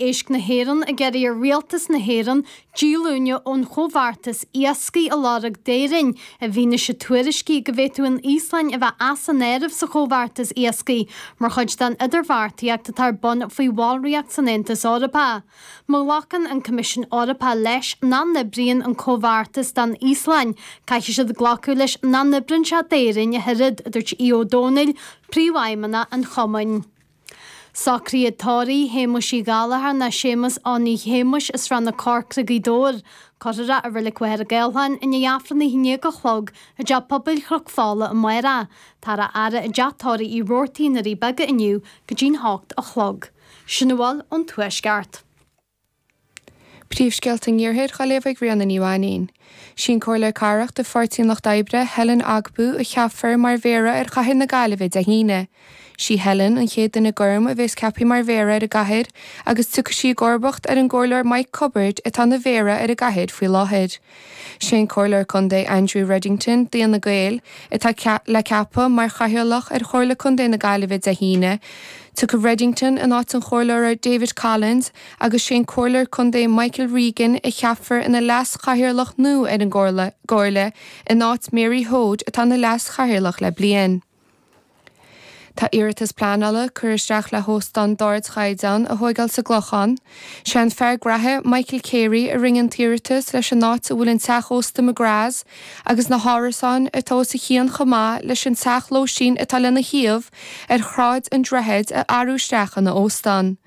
Éisc na hÉireann ag iarraidh ar Rialtas na hÉireann díolúine ón Chomhbheartas Iascaigh a lorg d'Éirinn i bhfianaise tuairiscí go bhféadfadh an Íoslainn a bheith as an áireamh sa Chomhbheartas Iascaigh mar chuid den idirbheartaíocht atá ar bun faoi bhallraíocht san Aontas Eorpach. Má ghlacann an Coimisiún Eorpach leis nach n-oibríonn an Comhbheartas don Íoslainn, caithfidh siad glacadh leis nach n-oibríonn sé d'Éirinn ach oiread, a dúirt Aodh Ó Domhnaill, Príomhfheidhmeannach an Chumainn. Socruithe tórraimh Shéamuis Uí Ghallchóir ná Séamus Annie Shéamuis as Srath na Corcra Gaoth Dobhair. Cuirfear é i Reilig Mhachaire Gathlán i ndiaidh Aifreann a haon déag a chlog i dTeach Pobail Chnoc Fola amárach. Táthar á fhaire i dTeach Tórraimh Uí Rabhartaigh, Na Doirí Beaga inniu go dtí'n h-ocht a chlog. Sin a bhfuil ón tuaisceart. Príomhscéalta an Iarthair á léamh ag Ríona Ní Mhainín. Sí an Comhairleoir Cathrach de Pháirtí an Lucht Oibre, Helen Ogbu, a cheapfar mar Mhéara ar Chathair na Gaillimhe Dé hAoine. Sí Helen an chéad duine gorm a bhéas ceaptha mar Mhéara ar an gcathair agus tiocfaidh sí i gcomharbacht ar an gComhairleoir Mike Cubbard atá ina Mhéara ar an gcathair faoi láthair. Sé an Comhairleoir Contae Andrew Reddington d'Fhine Gael, atá le ceapadh mar Chathaoirleach ar Chomhairle Contae na Gaillimhe Dé hAoine. Tiocfaidh Reddington in áit an Chomhairleora David Collins agus sé an Comhairleoir Contae Michael Regan a cheapfar ina Leas-Chathaoirleach nua ar an gComhairle, in áit Mary Hoade atá ina Leas-Chathaoirleach le bliain. Tá iarratas pleanála curtha isteach le hóstán d'ardchaighdeán a thóigeáil sa gClochán. Sé an fear graithe Michael Carey a rinne an t-iarratas leis an áit a bhfuil an teach ósta McGraths agus na hárasáin atá os a chionn chomh maith leis an teach lóistín atá lena thaobh ar Shráid an Droichid a athrú isteach ina óstán.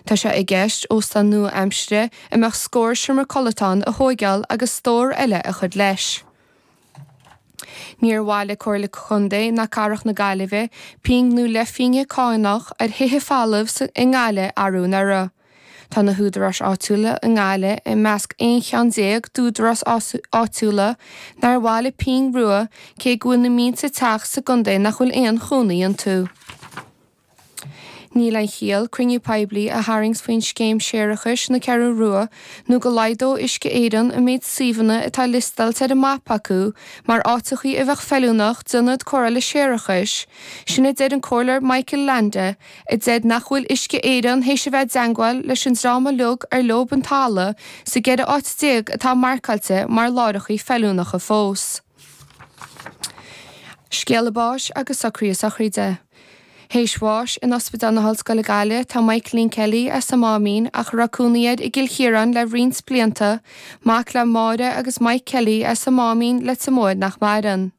Tá sé i gceist óstán nua-aimseartha a mbeadh scór seomra codlata ann a thóigeáil agus stór eile a chur leis. Níor bhailigh Comhairle Contae ná Cathrach na Gaillimhe pingin nó leithphingin cánach ar thithe folamh i nGaillimh arú anuraidh. Tá na húdaráis áitiúla i nGaillimh i measc 11 cheann d'údaráis áitiúla nár bhailigh pingin rua cé go bhfuil na mílte teach sa gcontae nach bhfuil aon chónaí iontu. Níl aon chiall cruinniú poiblí a tharraingt faoin scéim séarachais na Ceathrún Rua nó go laghdódh Uisce Éireann an méid suíomhanna atá liostailte ar an mapa acu mar áiteachaí a bheadh feiliúnach d'ionad cóireála séarachais, sin a deir an Comhairleoir Michael Leainde, a deir nach bhfuil Uisce Éireann théis a bheith i dteangmháil leis an dream uiliug ar leob an talamh sa gceithre áit déag atá marcáilte mar láithreachaí feiliúnacha fós. Scéala báis agus socruithe sochraide. Théis bháis in Ospidéal na hOllscoile Gaillimh tá Michaelín Kelly as an Máimín ach a raibh cónaí air i gCill Chiaráin le roinnt blianta, mac le Máire agus Mike Kelly as an Máimín, Leitir Móir nach maireann.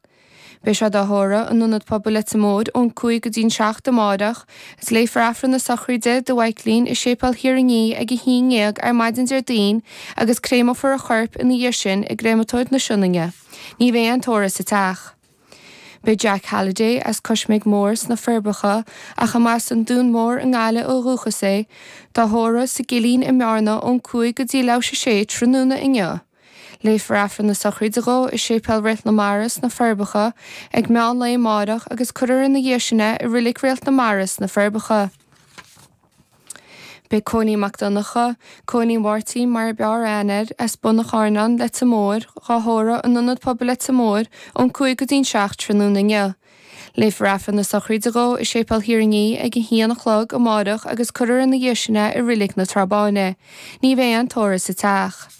Beidh sé dhá thórramh in Ionad Pobail Leitir Móir ón 5 go dtí'n 7 amárach Is léifear Aifreann na Sochraide do Mhaiclín i Séipéal Thír an Fhia ag a haon déag ar maidin Déardaoin agus créamófar a chorp ina dhiaidh sin i gcréamatóir na Sionainne. Ní bheidh aon tórramh sa teach. Beidh Jack Halliday as Coisméig Mór sna Forbacha ach a mba as an Dún Mór i nGaillimh ó dhúchas é, dá thórramh, sa gCillín i mBearna ón 5 go dtí leathuair tar éis 6 tráthnóna inniu. Léifear Aifreann na Sochraide dhó i Séipéal Réalt na Mara sna Forbacha ag meán lae amáireach agus cuirfear ina dhiaidh sin é i Reilig Réalt na Mara sna Forbacha. Beidh Cóilín Mac Donncha, Cóilín Mháirtín mar ab fhearr aithne air, as Bun an Charnáin, Leitir Móir, dhá thórramh, in Ionad Pobail Leitir Móir, ón 5 go dtí an 7 tráthnóna inniu. Léifear Aifreann na Sochraide dó i Séipéal Thír an Fhia ag a haon a chlog amáireach agus cuirfear ina dhiaidh sin é i Reilig na Trá Báine. Ní bheidh aon tórramh sa teach.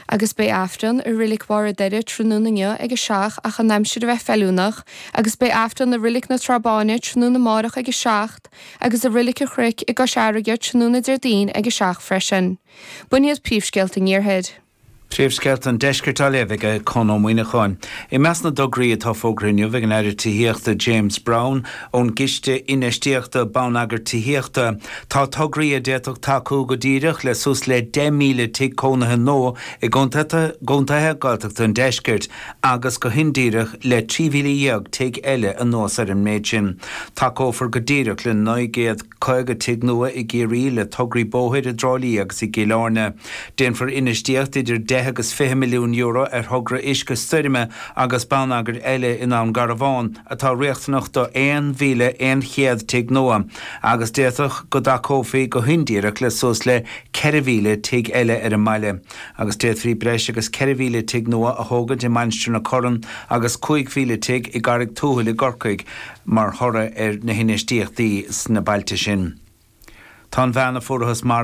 Agus beidh Aifreann i Reilig Bharr an Doire tráthnóna inniu ag a seacht ach an aimsir a bheith feiliúnach agus beidh Aifreann i Reilig na Trá Báine tráthnóna amáireach ag a seacht agus i Reilig a' Chnoic i gCois Fharraige tráthnóna Déardaoin ag a seacht freisin. B'shin iad príomhscéalta an Iarthair. Príomhscéalta an Deiscirt á léamh ag Conn Ó Muíneacháin. I measc na dtograí atá fógartha inniu ag an Aire Tithíochta James Browne ón gCiste Infheistíochta Bonneagair Tithíochta tá tograí a d'fhéadfadh tacú go díreach le suas le 10,000 tigh cónaithe nua i gcontaetha Gaeltachta an Deiscirt agus go hindíreach le 13,000 tigh eile. Anuas ar an méid sin, tacófar go díreach le 950 tigh nua i gCiarraí le tograí bóthair i dTrá Lí agus i gCill Airne. Déanfar infheistíocht idir deich agus fiche milliún euro ar thogra uisce stoirme agus bonneagair eile i nDún Garbhán atá riachtanach do 1,100 tigh nua agus d'fhéadfadh go dtacófaí go hindíreach le suas le 4,000 tigh eile ar an mbaile agus d'fhéadfaí breis agus 4,000 tigh nua a thógaint i Mainistir na Corann agus 5,000 tigh i gCarraig Tuathail i gCorcaigh mar thoradh ar na hinfheistíochtaí sna bailte sin. Tá an bhean a fuarthas marbh.